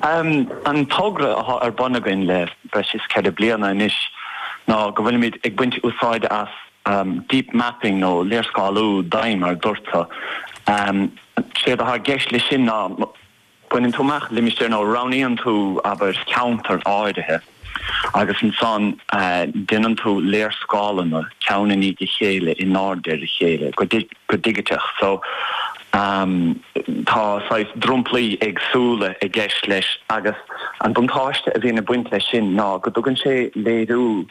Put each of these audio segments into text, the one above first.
An togra atá ar bun againn le breis is ceithre bliana anois ná go bhfuilimid ag baint úsáide as deep mapping nó léarscáiliú doimhin mar a dúrtsa. Séard atá i gceist leis sin ná baineann tú amach limistéar nó roghnaíonn tú, abair, ceantar áirithe, agus ansan déanann tú léarscáileanna ceann i ndiaidh a chéile in airde ar a chéile go digiteach so tá saghas dromchlaí éagsúla i gceist leis agus an buntáiste a bhíonn ag baint leis sin ná go dtugann sé léiriú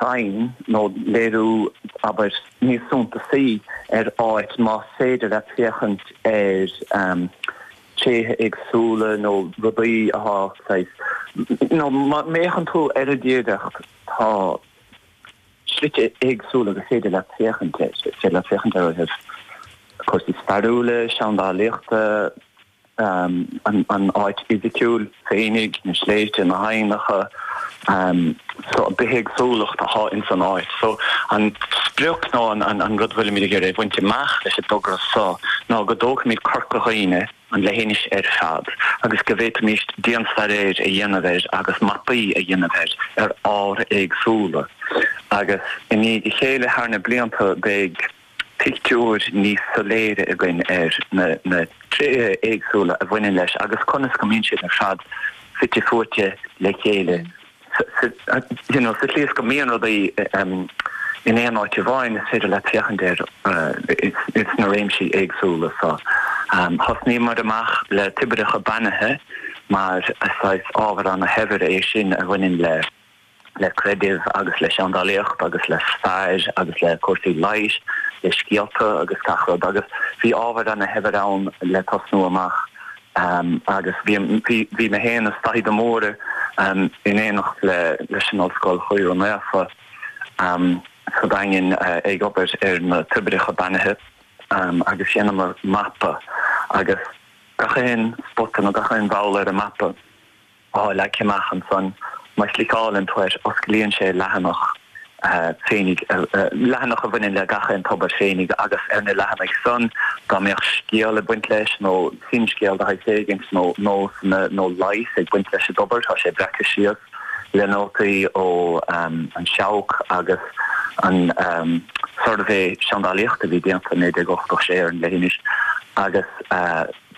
dúinn nó léiriú, abair, níos suntasaí ar áit más féidir leat féachaint ar tréithe éagsúla nó rudaí atá saghas. nó má fhéachann tú ar an dtíreolaíocht tá slite éagsúla gur féidir leat féachaint air. Is féidir leat féachaint air ó thaobh cúrsaí stairiúla, seandálaíochta, an áit fhisiciúil. féinig, na sléibhte, na haibhneacha, bithéagsúlacht atá ins an áit. So, an sprioc nó an rud a bhfuilimid ag iarraidh a bhaint amach leis an dtogra so ná go dtógfaimid Corca Dhuibhne, an leithinis ar fad, agus go bhféadfaimis dianstaidéar a dhéanamh air agus mapaí a dhéanamh air ar ábhair éagsúla. Agus i ndiaidh a chéile, thar na blianta beidh pictiúr níos soiléire againn ar na tréithe éagsúla a bhaineann leis agus conas go mbíonn siad ar fad fite fuaite le chéile you know sa tslí is go mbíonn rudaí in aon áit amháin is féidir leat féachaint air sna réimsí éagsúla so thosnaíomar amach le toibreacha beannaithe mar saghas ábhar ana-shaibhir é sin a bhaineann le le creideamh agus le seandálaíocht agus le stair agus le cúrsaí leighis, le scéalta agus gach rud agus bhí ábhar ana shaibhir ann le tosnú amach agus bhí bhí mé féin is Daithí de Mórdha in éineacht le leis an Ollscoil Choir Naofa sa Daingean ag obair ar na toibreacha beannaithe agus dheineamar mapa agus gach aon spota nó gach aon bhall ar an mapa. Tá leagtha amach ansan má chliceálann tú air, osclaíonn sé leathanach féinig, leathanach a bhaineann le gach aon tobar féinig agus ar na leathanaigh san, dá mbeadh scéal ag baint leis nó finscéal de shaghas éigint nó nósanna nó leigheas ag baint leis an dtobar, tá sé breacaithe síos le nótaí ó An Seabhac agus an Suirbhé Seandálaíochta a bhí déanta i 1986 ar an leithinis agus.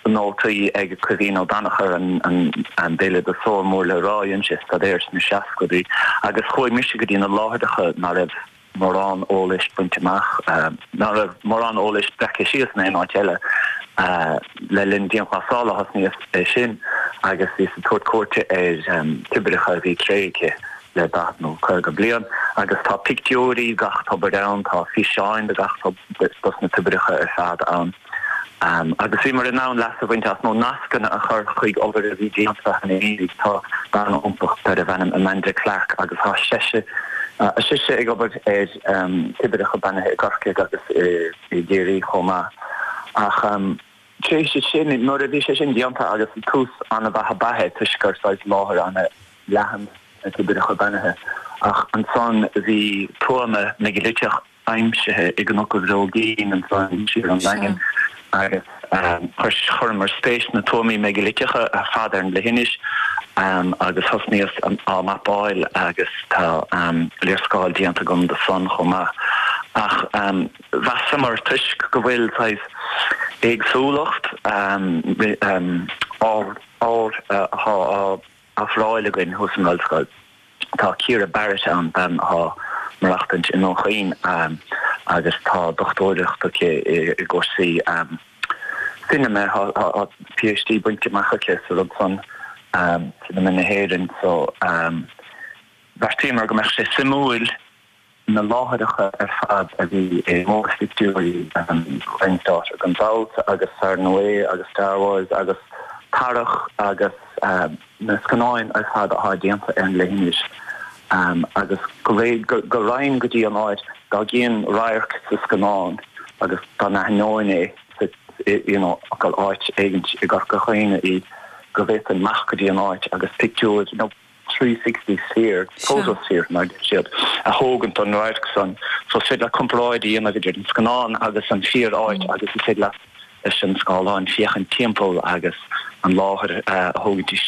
nótaí ag Caoimhín Ó Danachair, an béaloideasóir mór le rá, dhein sé staidéar sna seascaidí agus chuaigh mise go dtí na láithreacha ná raibh mórán eolais bainte amach, ná raibh mórán eolais breactha síos in aon áit eile. Le linn dianghlasála a thosnaíos é sin agus bhíos ag tabhairt cuairte ar toibreacha a bhí tréigthe le daichead nó caoga bliain agus tá pictiúirí de gach tobar ann, tá físeáin de gach tobar dos na toibreacha ar fad ann. Agus bhíomar in ann leas a bhaint as nó nascanna a chur chuig obair a bhí déanta cheana féin. Tá bean iontach darb ainm Amanda Clarke agus tá sise ag obair ar Toibreacha Beannaithe i gCorcaigh agus i gCiarraí chomh maith. Ach tar éis sin, nuair a bhí sé sin déanta agus tús an-mhaith ab ea é toisc gur saghas láthair an-leathan na Toibreacha Beannaithe. Ach ansan bhí tuama meigiliteach aimsithe i gCnoc a' Bhróigín ansan siar ón Daingean agus chuireamar spéis sna tuamaí meigiliteacha ar fad ar an leithinis agus thosnaíos á mapáil agus tá léarscáil déanta agam do san chomh maith ach mheasamar toisc go bhfuil saghas éagsúlacht ábhar ar fáil againn thuas san ollscoil. Tá Ciara Barrett ann, bean athá maireachtaint i nDún Chaoin agus tá dochtúireacht aici i gcúrsaí cinema, athá PhD bainte amach aici sa rud san, cinema na hÉireann, so bheartaíomar go mbeadh sé suimiúil. Na láithreacha ar fad a bhí i mórphictiúirí Ryan's Daughter, gan dabht, agus Far and Away agus Star Wars agus Tarrac agus na scannáin ar fad atá déanta ar an leithinis agus go réidh go raghainn go dtí an áit dá gcífinn radharc sa scannán agus dá n-aithneoinn é so you know gur áit éigint i gCorca Dhuibhne í go bhféadfainn amach go dtí an áit agus pictiúir 360 sphere, photosphere mar a deir siad, a thógaint don radharc san. So is féidir leat comparáid a dhéanamh idir an scannán agus an fíor áit agus is féidir leat leis an scáileán féachaint timpeall agus an láthair a thógaint isteach.